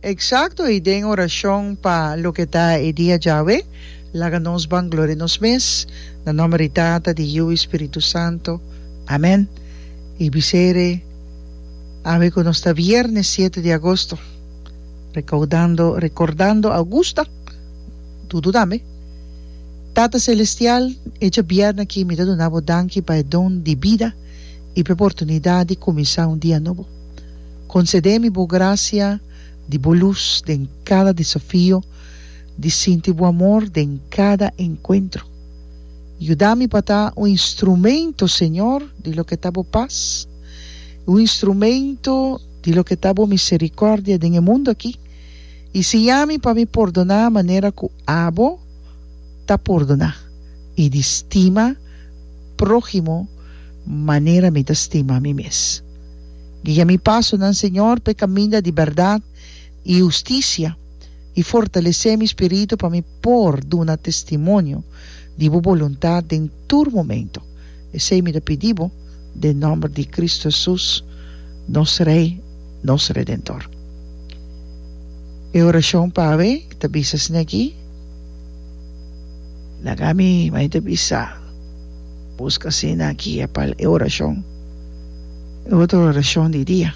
Eksakto i den orashon pa loke ta e dia djawe, laga nos bangloria nos mes, na nòmber di Tata, di Yiu i Spiritu Santo. Amèn. I bis'er awe ku nos ta viernes siete di agosto, rekaudando, rekordando Augusta, Dudu tambe. Tata Selestial, e dje bièrnè aki mi ta duna bo danki pa e don di bida i p'e oportunidat di kuminsá un dia nobo. Konsede mi bo grasia di bo lus den kada desafio, di sinti bo amor den kada enkuentro. Yuda mi pa ta un instrumento, Señor, di loke ta bo pas, i un instrumento di loke ta bo miserikordia den e mundu aki, i siña mi pa mi pordoná manera ku abo ta pordoná, i di stima próhimo manera mi ta stima mi mes. Guia mi pasonan, Señor, p'e kaminda di bèrdat i hustisia, i fortalesé mi spiritu pa mi por duna testimonio di bo boluntat den tur momentu. Esei mi ta pidi bo den nòmber di Kristu Hesus, nos Rei, nos Redentor. E orashon p'awe ta bisa asina aki, Laga mi mai ta bisa. Busca asina guia pa e oracion, e otro oracion di dia.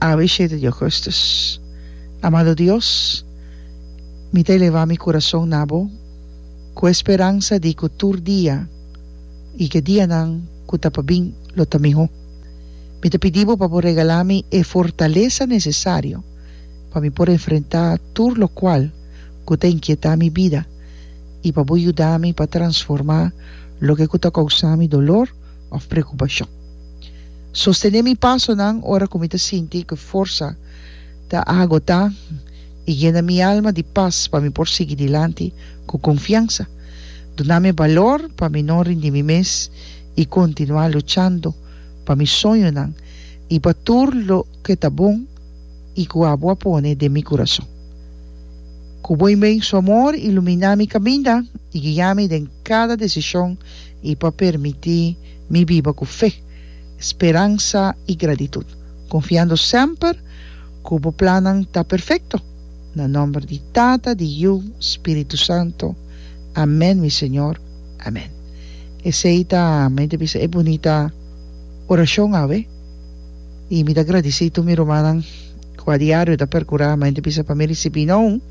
Awe shete di augustus. Amado Dios, mi ta eleva mi curason na Bo cu e speransa di cu tur dia y cu e dianan cu ta pa bin lo ta miho. Mi ta pidi Bo pa Bo regala mi e fortalesa necesario. pa mi por enfrentá tur lokual ku ta inkietá mi bida i pa bo yuda mi pa transformá loke ku ta kousá mi dolor òf preokupashon. Sostené mi pasonan ora ku mi ta sinti ku forsa ta agotá i yena mi alma di pas pa mi por sigui dilanti ku konfiansa. Duna mi balor pa mi no rindi mi mes i kontinuá luchando pa mi soñonan i pa tur loke ta bon. i ku abo a pone den mi kurason. Ku bon ben Su amor iluminá mi kaminda i guia mi den kada desishon i pa permití mi biba ku fe, speransa i gratitut, konfiando semper ku Bo plannan ta perfekto. Na nòmber di Tata, di Yu, Spiritu Santu. Amèn, mi Señor. Amèn. Esei ta, mi ta bisa e bunita orashon awe. I mi ta gradisí tur mi rumannan ku a diario ta perkurá, mas ente bisa pa mi risibí no un,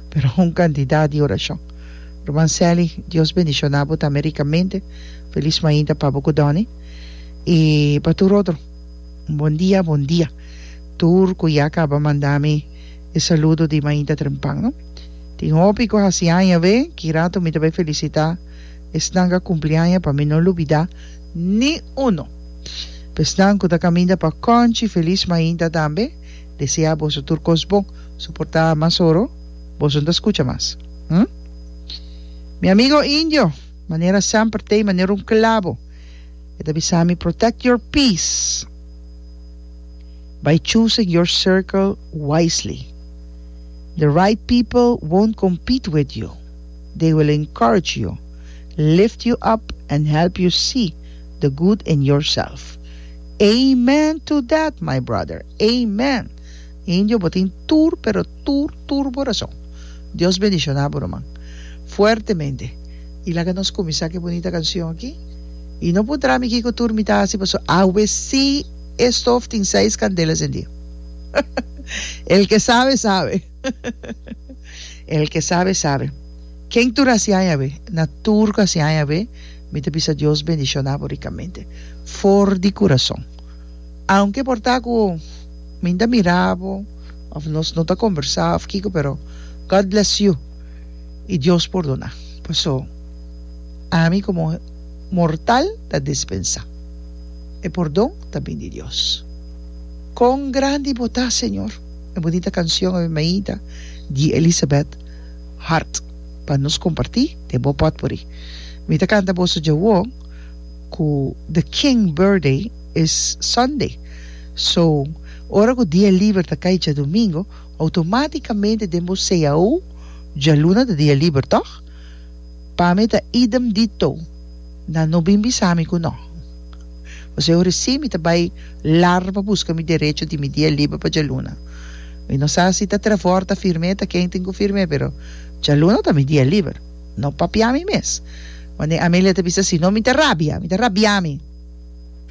pero un kantidat di orashon. Ruman Sally, Dios bendishoná bo tambe rikamente. Felis mainta pa bo ku Donny. I pa tur otro, un bon dia, bon dia. Tur ku ya kaba manda mi e saludo di mainta trempan, no. Tin hopi ku hasi aña awe, kirato mi ta bai felisitá esnan ku a kumpli aña pa mi no lubidá. Ni uno. Pesnan cu ta caminda pa Conchi feliz mainta tambe desea boso tur cos bon. Soporta mas oro boso no ta scucha mas. Hm. Mi amigo Indio manera semper t'ey manera un clavo e ta bisami protect your peace by choosing your circle wisely. The right people won't compete with you. They will encourage you, lift you up and help you see the good in yourself. Amen to that my brother! Amen! Indio bo tin tur pero tur tur bo rason. Dios bendiciona bo ruman fuertemente y laga nos cuminsa cu e bunita cancion aki y no puntra mi kico tur mi ta haci paso awe si e stof tin seis candelas endio. El ke sabe sabe. El ke sabe sabe. Ken tur a siña awe? Na tur ku a siña awe, mi ta bisa Dios bendishona bo rikamente for di kurason. Aunke por ta ku mi ta mira bo òf nos no ta kombersá òf kiko pero God bless you i Dios pordona paso ami komo mortal ta dispensá. E pordon ta bini di Dios. Kon grandi bo ta, Señor! E bunita canción Ave Maida di Elisabeth Hart pa nos comparti den bo potpourri. Mi ta canta boso dje awo cu the king birthday is Sunday so ora cu dia liber ta cay djadomingo automaticamente den bo CAO djaluna ta dia liber toch? Pa mi ta idem dito. Nan no bin bisa mi ku no. Jose ora si mi ta bai lar pa buska mi derecho di mi dia liber pa djaluna. Mi no sa si ta Trevor ta firm'é ta kentin ku firm'é pero djaluna ta mi dia liber. No papia mi mes. Manera Amelia ta bisa si no mi ta rabia, mi ta rabia mi.